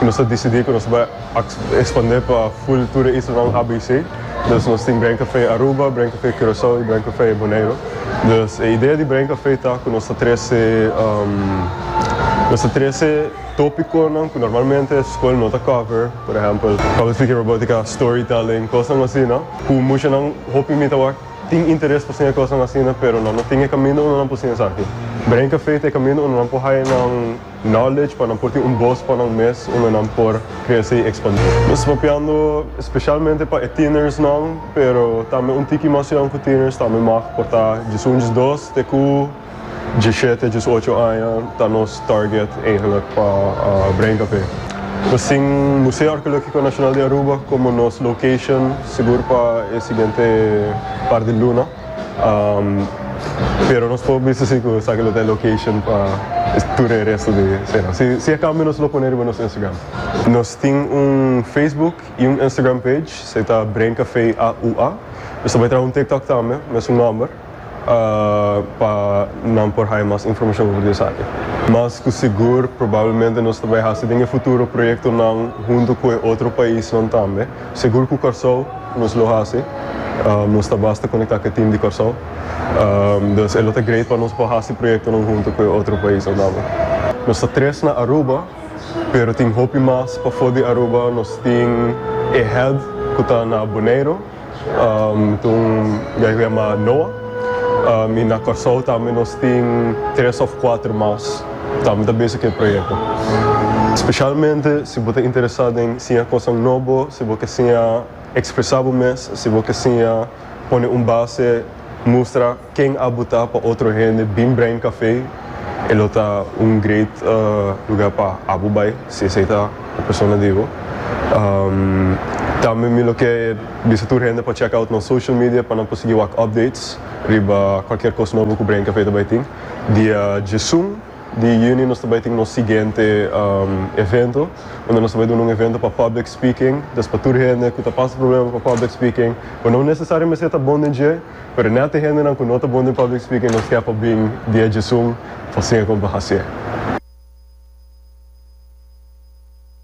Nos a disidí ku nos bai ekspandé pa ful tur e isla nan ABC. Dus nos tin Bren Kafé Aruba, Bren Kafé Kurasou i Bren Kafé Boneiru. Dus e idea di Bren Kafé ta ku nos ta trese nos ta trese tópikonan ku normalmente skol no ta kòver, por ehèmpel, public speaking, robótika, storytelling, kosnan asina ku musha nan, hopi mi tabata, tin interes pa siña kosnan asina pero nan no tin e kaminda unda nan por siña esaki. Bren Kafé ta e kaminda unda nan por haña nan. Knowledge pa nan por tin un bos pa nan mes unda nan por krese i ekspandi. Nos ta papiando spesialmente pa e tienersnan, pero tambe un tiki mas yon ku tieners tambe mag por ta djesun, djesdos te ku djeshete, djesocho aña ta nos target eigenlik pa Brein Café. Nos tin Museo Arkeológiko Nashonal di Aruba komo nos location sigur pa e siguiente par di luna. Pero nos por bisa si cu esaki lo ta e location pa tur e resto di semana. Si si e cambio nos lo pone riba nos Instagram. Nos tin un Facebook y un Instagram page, se ta Brain Café AUA. Nos ta bay traha un TikTok tambe, mesun nomber, pa nan por haya mas informacion over di esaki. Mas cu sigur probablemente nos ta bay haci den e futuro proyectonan hunto cu e otro paisnan tambe. Segur cu Kòrsou nos lo haci. Nos ta basta conecta cu e team di Kòrsou. Dus e lo ta great pa nos por haci proyectonan hunto cu e otro paisnan tambe. Nos ta tres na Aruba, pero tin hopi mas pafo di Aruba. Nos tin e head cu ta na Boneiro, ta un guy cu yama Noah. Y na Kòrsou tambe nos tin tres of cuater mas. Ta mi ta bese ku e proyekto. Spesialmente si bo ta interesá den siña kosnan nobo, si bo ke siña ekspresá bo mes, si bo ke siña pone un base mustra ken abu ta pa otro hende bin Brain Café, e lo ta un great lugá pa abu bai, si esei ta e persona di bo. Tambe mi lo ke bisa tur hende pa chèk out nos social media pa nan por sigui wak updates riba kualkier kos nobo ku Brain Café ta bai tin. Dia djesun di juni nos ta bai tin nos siguiente evento unda nos ta bai duna un evento pa public speaking dus pa tur hende ku ta pasa problema pa public speaking ku no nesesario mester ta bon den dje pero net e hendenan ku no ta bon den public speaking nos kè pa bin dia djesun pa siña kon pa hasié.